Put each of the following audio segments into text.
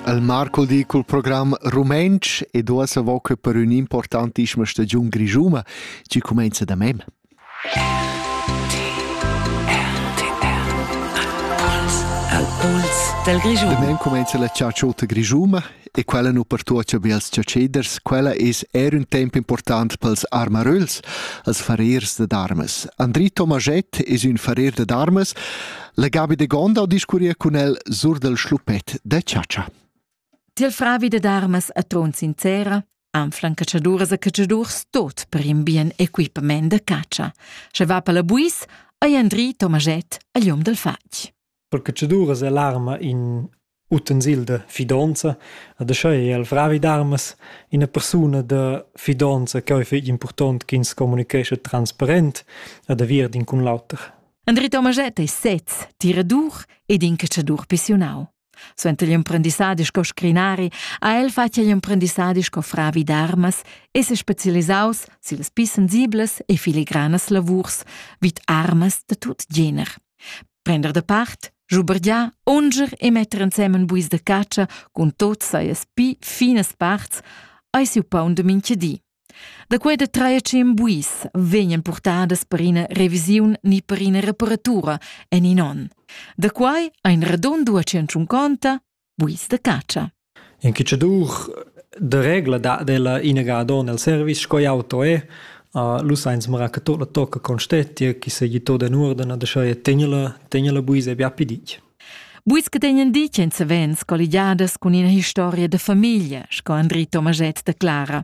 El mar cul di cul program rumentsch ed uossa vo que per ün'importantischma stagiun grischuna chi cumainza da mem. Al puls dal Grischun. Da mem cumainza la ciaciota grischuma e quella nu pertuocha be als ciaceders, quella es eir ün temp important pels armaröls, als farers da darmas. Andri Tomaschett es ün farer da darmas, La Gabi de Gonda discurria cun el sur del schluppet de chatscha. Til fravi de darmas a tron sincera, anflan catschaduras a catschadurs tot per in bien equipament de catscha. Sche va per la buis, ei Andri Tomaget a lium del fatg. Per catschaduras è l'arma in Utensilda fidonza ha deschà eir al fravi d'armas üna persuna da fidonza ch'eu fich important ch'ins comunichescha transparent ed aviert in cun l'oter. Andri Tomaschett es sez tiradur ed incatschadur pissiunau. Suenter l'emprendissadi sco scrinari ha el fatg igl emprendissadi sco fravi d'armas e se specialisaus sillas pli sensiblas e filigranas lavurs vid armas da tut gener. Prender da part, schubergiar, unger e metter ensemen buis da catscha cun tot sajas pi finas parts ei siu paun da mintga di. Da quei da trair tschien buis vegnan purtadas per ina revisiun ni per ina reparatura en in onn. Da quei ein radund 250 Buis da catscha. In cucciadur de regla dat della inagado nel service sco auto è Uh, lu sainz mara che tot la tocca constetia chi se gli tot en ordine de scheie tegnela tegnela buis e bia pidic. Buis che tegnen dic en se vens colligiadas cun ina historia de famiglia, sco Andri Tomaget de Clara.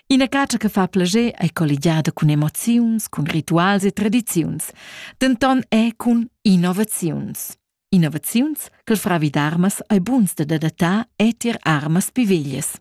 Ina catscha che fa plascher è colligiada cun emoziuns, cun rituals e tradiziuns, denton è cun innovaziuns. Innovaziuns che fravi d'armas ei buns da dadattar e tier armas pi veglies.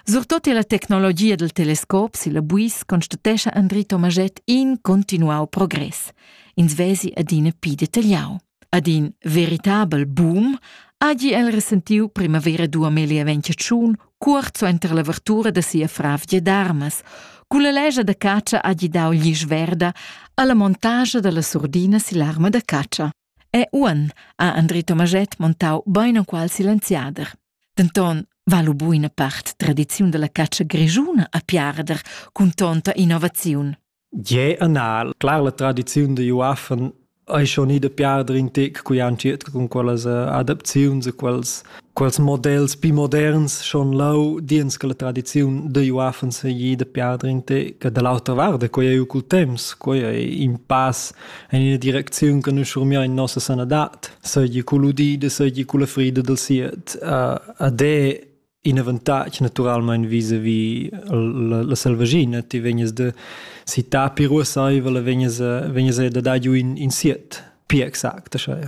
Surtot la tecnologia del telescop si la buis constatescha Andri Tomaget in continuau progress. Ins vesi adina pi detagliau. Ad in veritabel boom hagi el resentiu primavera 2021 cuort suenter l'avertura da sia fravgia d'armas. Cun la legia da catscha hagi dau glisch verda alla montascha dalla surdina sill'arma da catscha. E uan ha Andri Tomaget montau beinenqual silenziader. Denton va lu buina part tradiziun dalla catscha grischuna a piarder cun tonta innovaziun. Je anal. Clar, la tradiziun da uaffen ei schon ida piarder in tec cui han circa cun quellas eh, adaptaziuns e quels, quels models pi moderns schon lau diens che la tradiziun da uaffen se ida piarder in tec. E da l'autra vart, quei ei cul temps, quei ei in pass en ina direcziun che noi schurmiar in nossa sanadat, seigi cul udida, seigi cul la frida dal siet. Uh, ad è in avantatg naturalmein vis-a-vis la, la selvaschina ti vegnas da si ta piruasaivel vegnas vegnas da dar giu in, in siet pia exact schai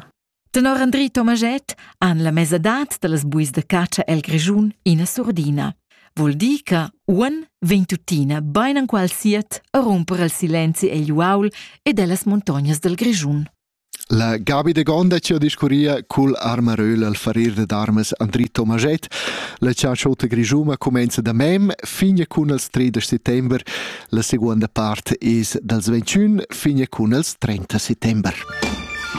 Tenor Andri Tomaget han la mesadad dallas buis da catscha el Grischun ina surdina. Vul dir che uan vegn tuttina bein enqual siat a rumper al silenzi egl uaul ed ellas montognas dal Grischun. La Gabi de Gonda ci ha discurria cul armaröl al farir dad armas Andri Tomaschett. La ciaciota grigiuma comenza da mem fin cun els 3 de settember. La seconda part es dals 21 fin cun els 30 settember.